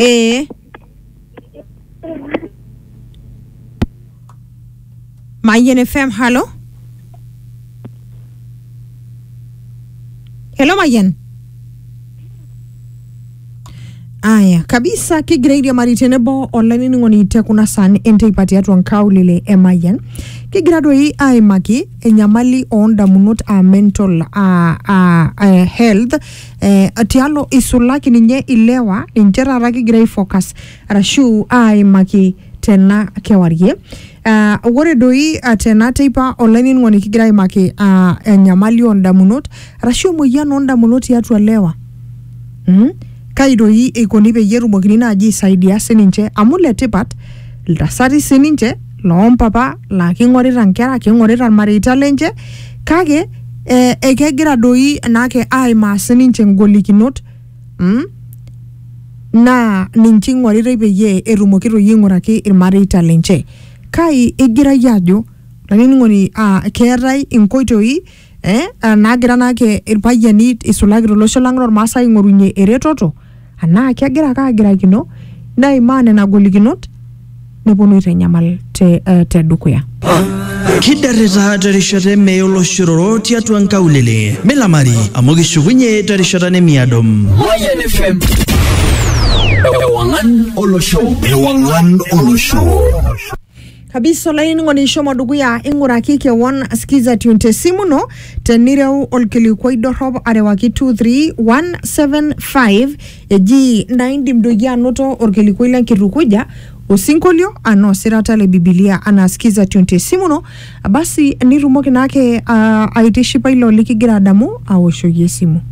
ee mayian fm halo helo mayian aya kabisa kigira airiamari tenebo olainining'oni te kuna saan enteipa tiatua nkaulele e mayian kigira doi aimaki enyamali oondamunot aa mental aa, aa, aa health eh, tialo isulaki ninye ilewa ninche taata kigira aifocus arashu aimaki tena kewarie Ah, ore doi ah, tena teipa olainining'oni kigira aimaki ah, enyamali oondamunot arashu emoyian oondamunot tiatua lewa mm? kai doi eikoni peyie etumokini naaji aisaidia sininche amu letipat iltasati sininche loo mpapa laa king'orita nkera, king'orita ilmareita lenche kake eh, ekegira doi naake aimaa sininche ingolikinot mm? naa ninche ing'oritai peyie etumoki toi aing'uraki ilmareita lenche. Kai igirayie ajo olainining'oni ah, keetae inkoitoi eh, ah, naagira naake irpayiani isulaki tolosho lang lormaasai aing'orunyie eretoto anaa kegira ake agirakino neimaa nena golikinot neponu aitanyamal te, eh, te dukuya kiderrita terishata emeye oloshororo tiatua nkaulele milamari amu kishukunye terishata nemiado Mayan FM. Ewangan Olosho. Ewangan Olosho. kabisa olainining'oni ishomo dukuya ing'uraki kewon skiza tune te simu ino tenireu olkilikuai dorrop arewaki 23175 eji naa indim doi anoto olkilikuai lenkitukuja osinkolio anaa osirata le bibilia anaa skiza tune te simu ino basi nitumoki naake uh, aitishipa ilo likigira adamu aoshoki esimu